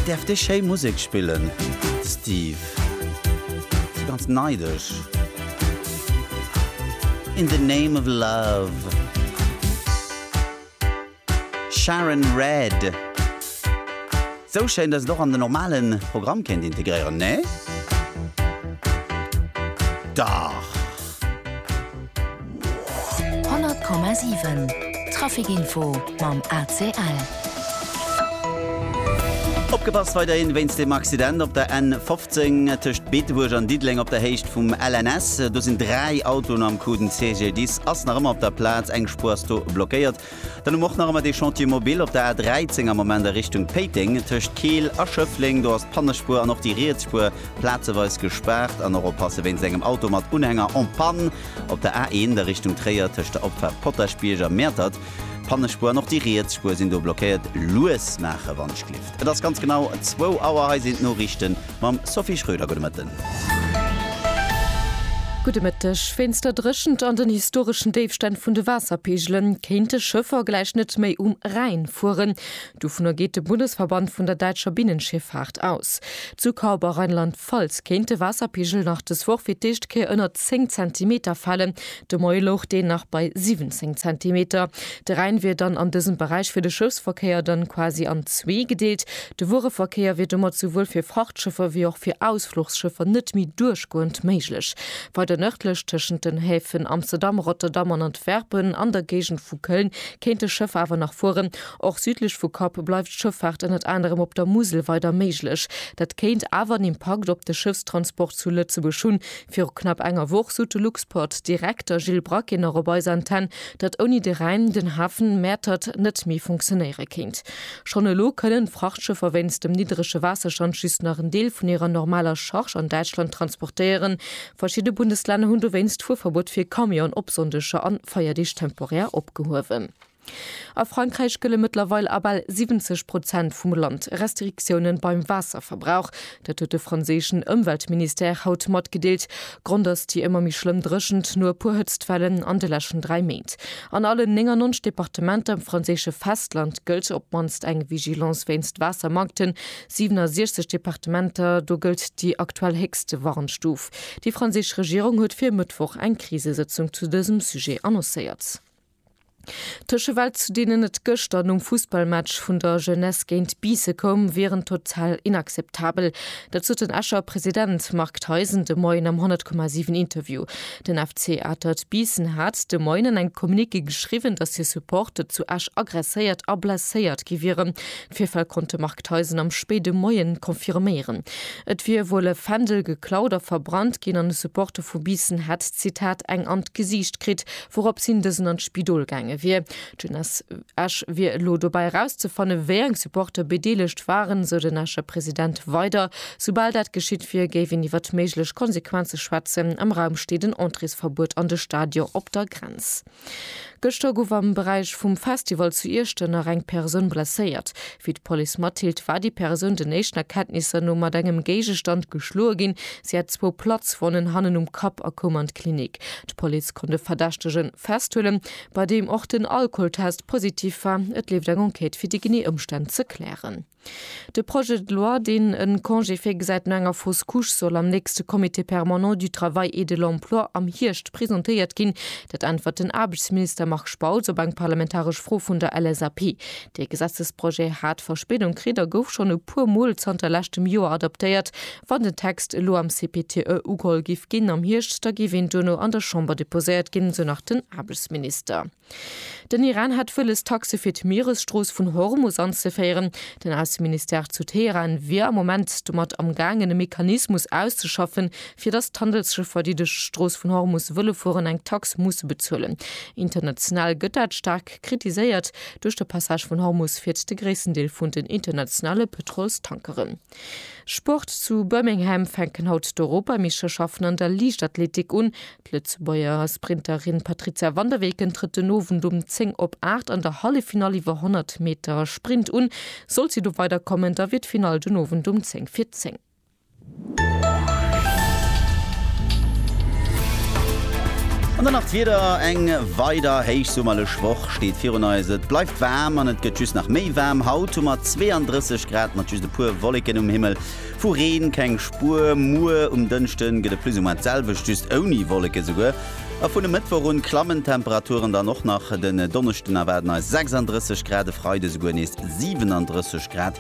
Däerf déi schéi Musek spillen, Steve? Si ganz neidesch. In the name of love. Sharon Red. Sou schéin, dass et och an den normale Programm kéint integréieren, nee? Dach! 100,7 Traficinfo mam ACL. Opgepasst weiderhin wéinst dem Accident op der N 15 tëscht Beetebuerg an Diddeleng op der Héicht vum LNS. Do sinn 3 Autoen am Coup. Den CGDIS ass nach ëmmer op der Plaz, eng Spuer ass do blockéiert. Dann hu mer och nach ëmmer dee Chantier mobile op der A 13 am Moment a Richtung Péiteng, tëscht Keel a Schëffleng. Do ass d'Pannespuer an och déi Rietsspuer plazeweis gespaart. An och oppasse wéinst engem Auto mat Unhänger en panne op der A 1 a Richtung Tréier, tëscht der Opfaart Potaschbierg a Mäertert. D'Pannespuer an och déi Rietsspuer sinn do blockéiert. Lues maache wann d'Schlift. Et ass ganz genau zwou Auer. Hei sinn d'Noriichten. Mam Sophie Schröder, gudde Mëtten. Gudde Mëtteg. Wéinst der Dréchent an den historeschen Déifstänn vun de Waasserpeegele kéinte Schëffer gläich net méi um Rhäin fueren. Dovunner geet de Bundesverband vun der däitscher Binnenschiffaart aus. Zu Kaub a Rheinland-Pfalz kéint de Waasserpeegel nach dës Woch fir d'éischt Kéier ënner 10 Zentimeter falen. De Moie louch deen nach bei 17 Zentimeter. De Rhäin wier dann an dësem Beräich fir de Schëffsverkéier dann quasi an zwee gedeelt. De Wuereverkéier wier domat souwuel fir Frachtschëffer wéi och fir Ausfluchsschëffer net méi duerchgoend méiglech. Weider nërdlech, tëschent den Häfen Amsterdam, Rotterdam an Antwerpen an der Géigend vu Köln, kéint de Schëff awer nach fueren. Och südlech vu Kopp bleift d'Schëffaart ënnert anerem op der Musel weider méiglech. Dat kéint awer en Impakt op de Schëffstransport zu Lëtzebuerg hunn, Viru knapp enger Woch sot de Luxport Direkter Gilles Braquet nach op eis Antenn, datt ouni de Rhäin den Hafen Mäertert net méi funktionéiere kéint. Schonn elo kënnen d'Frachtschëffer wéinst dem niddrege Waasserstand just nach en Deel vun hirer normaler Charge an Däitschland transportéieren. Verschidde Bundeslänner hunn dowéinst d'Fuerverbuet fir Camionen op Sonndeger an Feierdeeg temporär opgehuewen. A Frankräich gëlle mëttlerweil a bal 70 Prozent vum Land Restriktioune beim Waasserverbrauch. Dat huet de franséischen Ëmweltministère haut matgedeelt. Grond ass déi ëmmer méi schlëmm Dréchent no e puer Hëtztwellen an de leschten dräi Méint. An allen 99 Departementer um franséische Festland gëllt op d'mannst eng Vigilance wéinst Waassermankten. 67 Departementer, do gëllt déi aktuell héchste Warnstuf. Déi franséisch Regierung huet fir e Mëttwoch eng Krisesëtzung zu dësem Sujet annoncéiert. D'Tëschewelt, zu deenen et gëschter nom Fussballmatch vun der Jeunesse géint Biisse koum, wieren total inakzeptabel. Dat sot den Escher President Marc Theisen de Moien am 100,7 Interview. Den FC Atert Biissen hat de Moien an engem Communiqué geschriwwen, datt hir Supporter zu Esch agresséiert a blesséiert gi wieren. D'Virfäll konnt de Marc Theisen am spéide Moie confirméieren. Et wier wuel e Fändel geklaut a verbrannt ginn an e Supporter vu Biissen hätt, Zitat, eng an d'Gesiicht kritt, Wourops hin dësen an d'Spidol gaange wier. D'Jeunesse Esch wier elo dobäi erauszefanne wéi eng Supporter bedeelegt waren, esou den Escher President weider. Soubal dat geschitt wier, géif een iwwert méiglech Konsequenze schwätzen. Am Raum steet en Entréesverbuet an de Stadion op der Grenz. Gëschter gouf am Beräich vum Festival zu Iechternach eng Persoun blesséiert. Wéi d'Police matdeelt, war déi Persoun den éischten Erkenntnisser no mat engem Géigestand geschloe ginn. Si hat zwou Platzwonnen hannen um Kapp a koum an d'Klinik. D'Police konnt e Verdächtegen festhuelen, bei deem och den Alkoholtest positiv war. Et leeft eng Enquête fir déi genee Ëmstänn ze klären. De Projet de loi, deen e Congé virgesäit no enger Fausse Couche, soll am nächste Comité permanent du Travail et de l'Emploi am Hierscht presentéiert ginn. Dat äntwert den Aarbechtsminister Marc Spautz op eng parlamentaresch Fro vun der LSAP. Dee Gesetzesprojet hat Verspéidung kritt a gouf schonn e puer Mol zanter leschtem Joer adoptéiert. Wann den Text elo am CPTE ugeholl giff ginn am Hierscht, da géif een duerno an der Chamber deposéiert ginn, esou nach den Aarbechtsminister. Den Iran hätt wëlles, Taxe fir d'Mieresstrooss vun Hormus anzeféieren. Den Ausseministère zu Teheran wier am Moment domat amgaangen, e Mechanismus auszeschaffen, fir datt d'Handelsschëffer, déi duerch d'Strooss vun Hormus wëlle fueren, eng Tax musse bezuelen. International gëtt dat staark. kritiséiert duerch de Passage vun Hormus fiert de gréissten Deel vun den internationale Pëtrolstankeren. Sport, Zu Birmingham fänken haut d'Europameeschterschaften an der Liichtathletik un. D'Lëtzebuerger Sprinterin Patrizia van der Weken trëtt den Owend um 10 op 8 an der Halleffinall iwwer 100 Meter Sprint un. Sollt si do weiderkommen, da wier d'Finall den Owend um 10 vir 10. An dann nach d'Wieder, Eng weider héichsummerlech Woch steet virun eis. Et bleift waarm an et gëtt just nach méi waarm. Haut hu mer 32 Grad mat just e puer Wolleken um Himmel. Vu Reen keng Spuer. Muer um Dënschde gëtt et plus ou moins d'selwecht, just ouni Wolleken esouguer. A vun e Mëttwoch un klammen d'Temperaturen dann och nach. Den Donneschden erwaarden eis 36 Grad, e Freide souguer nees 37 Grad.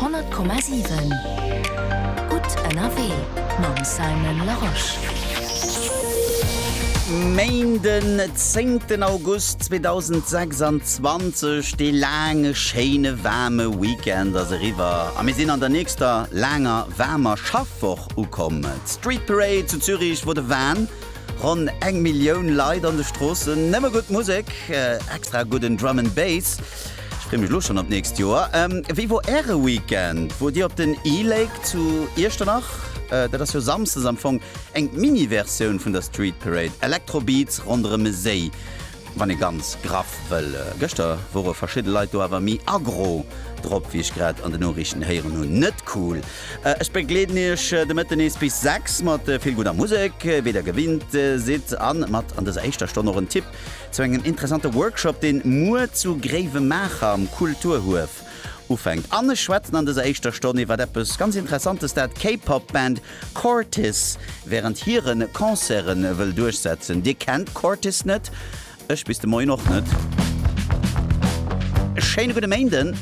100,7 Gutt ënnerwee mam Simon Larosche. Main den 10 ten August 2026, dee laange schéine waarme Weekend ass eriwwer a mir sinn an der nächster laanger waarmer Schaffwoch ukomm. D'Street Parade zu Zürich wor de Wahn, ronn eng Millioun Leit an de Stroossen, nëmme gutt Musek, extra gudden Drum and Bass. Ech free mech lo schon op d'nächst Joer. Wéi wor äre Weekend? Wor dir op den E-Lake zu Iechternach? Dat ass jo Samsdes am Fong eng Mini-Versioun vun der Street Parade, Electro-Beats ronderëm e Séi, wann ee ganz graff wëll. Gëschter wore verschidde Leit do awer méi aggro drop, wéi ech grad an de Noriichten héieren hunn. Net cool. Ech begleeden iech de Mëtten nees bis 6 mat vill gudder Musek, wéi der gewinnt sidd, a mat an dëser éischter Stonn och en Tipp Zu engem interessante Workshop, deen muer zu Gréiwemaacher am Kulturhuef ufänkt. An ech schwätzen an dëser éischter Stonn iwwert eppes ganz Interessantes, dat d'K-Pop Band Cortis während hieren Concerten wëll duerchsetzen. Dir kennt Cortis net? Ech bis de Moien och net. E schéine gudde Méinden.